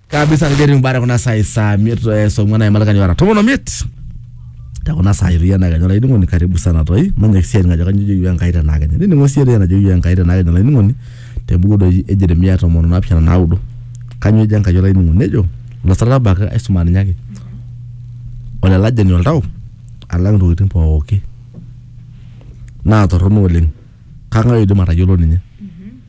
kabisa kajeri mbara kuna sai saa miet eh, saa ong'uan aimalakani ora tomon omiet te kuna sai tu yana kenya olainining'oni karibu sana toi manya kisiai ngajo kanyo joyu enkai tena kenya nining'o sii ejo enajo joyu enkai tena kenya olainining'oni te buku doi e jeremia tomon onaapishana naudo kanyo ejo enkai olainining'oni nejo lasarabak aisuma ninye ake ole lajani oltau alang intokitin pooki naa torrono oleng kang'ae oidim atayiolo ninye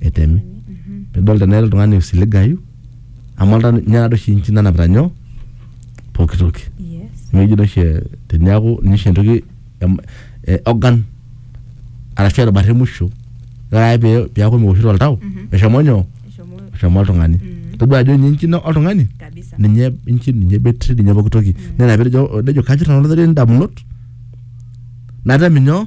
etemi pidol tenaa ira oltung'ani oisiligayu amu olta ninye nadoi oshi inchi nanapita nyoo pooki toki Yes. amu eji doi oshi eh, teniaku ninye oshi entoki em- eh, organ arashu erubata emusho ore ake pee piaku mewoshito oltau eshomo nyoo Eshomo eshomo oltung'ani todua ajo ninye inchi ino oltung'ani kabisa. ninye inchi ninye betri ninye pooki toki nena petejo nejo kanyorr nanu olorere indamunot natem inyoo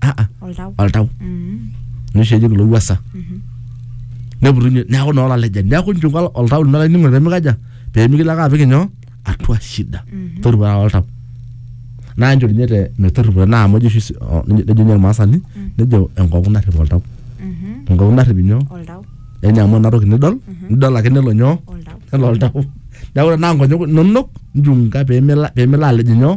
ah, ah, oltau oltau Mm. nisho eji kulo wuasa neputunye neaku naa olalejani neaku nchunga ol- oltau lino lainingo pemikaja pemikilo ake apik inyoo atua shida torripoa oltau naa nchoo ninye te metorripo naa amu ejo oshi si- o- nejo nejo ninye irmaasani nejo enkongu narrip oltau Mhm. enkongu narrip inyoo oltau yani amu ena toki nidol nidol ake nelo nyoo oltau nelo oltau neaku tenaa nkonyek inonok nchunga pemila pemila alej inyoo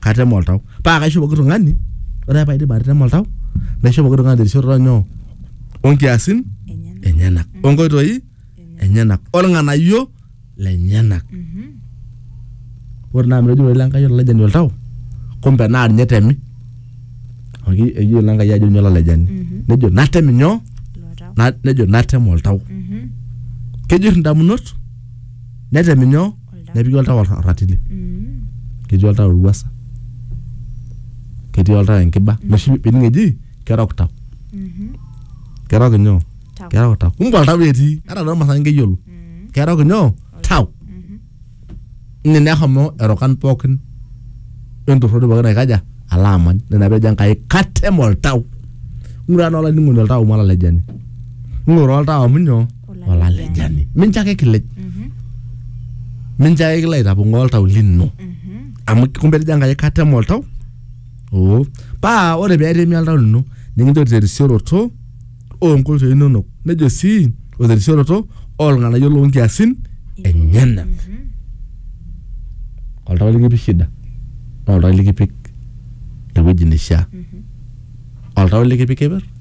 katema oltau paa kaisho pooki tung'ani ore ake paidip atema oltau naisho pooki tung'ani terisioroto nyoo onkiasin enyenak onkoitoi enyenak olng'anayio lenyenak ore naa amu etejo ilo Enkai olailejani oltau kumbe naa ninye etemi amu ki- eyiolo Enkai ajo ninye olailejani nejo natem inyoo Na- nejo natem oltau kejurr indamunot netem inyoo Oltau. nepiki oltau or- orratili Mm. ketii oltau ewuasa ketii oltau enkiba noshi pining eji kerok tau Mhm. kerok inyoo Tau. kerok tau kumbe oltau etii ata toomasaa nkeyiolo Mm. kerok inyoo tau Mhm. ine nehomo erokan pookin entorroni pookin aikaja ala amany nena pejo enkai katem oltau ng'ura naa olainining'oni oltau malalejani ng'ura oltau amu nyoo olalejani mincho ake kilej mincho ake kilo aitapong'oo oltau lino amu kumbe etejo enkai katema oltau oo paa ore peetemi oltau lino nikinchori terisioroto oonkoitoi inonok nejo sii o terisioroto olng'anayio loonkiasin enyenak oltau likipik shida naa oltau likipik ewueji neishia oltau likipik keper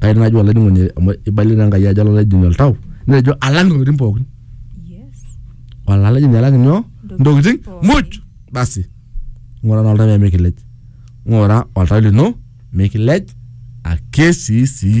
kai naaji olainining'oni amu eibalie naa Enkai ajo olalaejoni oltau netejo alang intokitin pookin Yes. olalaejoni alang inyoo intokitin pookin. muj basi ng'ura naa oltau pee mikilej ng'ura oltau lino mikilej ake sii sii